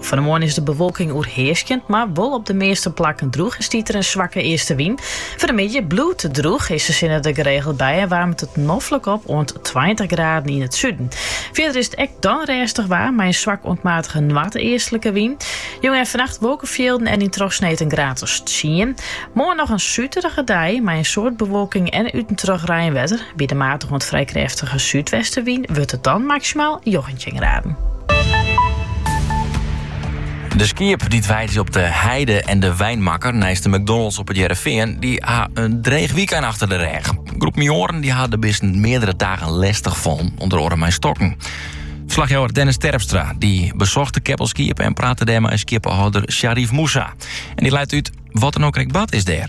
Fan de moarn is de bewolking oerhearskjend, mar wol op de measte plakken drûch en stiet der in swakke eastenwyn. Foar de middei bliuwt it drûch, is de sinne der geregeld by en waarmt it noflik op oant tweintich graden yn it suden. Fierder is it ek dan rêstich waar mei in swak oant matige noardeastlike wyn. Jûn en fannacht wolkefjilden en yn trochsneed in graad of tsien. Moarn noch in suterige dei mei in soad bewolking en út en troch reinwetter. By de matige oant frij krêftige súdwestenwyn wurdt it dan maksimaal njoggentjin graden. De skiep dy't weidje op De Heide en De Wynmakker neist de McDonald's op it Hearrenfean, dy ha in dreech wykein achter de rêch. In groep minsken dy ha de bisten meardere dagen lestichfallen, ûnder oare mei stokken. Ferslachjouwer Dennis Terpstra dy besocht de keppel skiep en prate dêr mei skieppehâlder Sharif Moussa. En dy leit út wat der no krekt bard is dêr.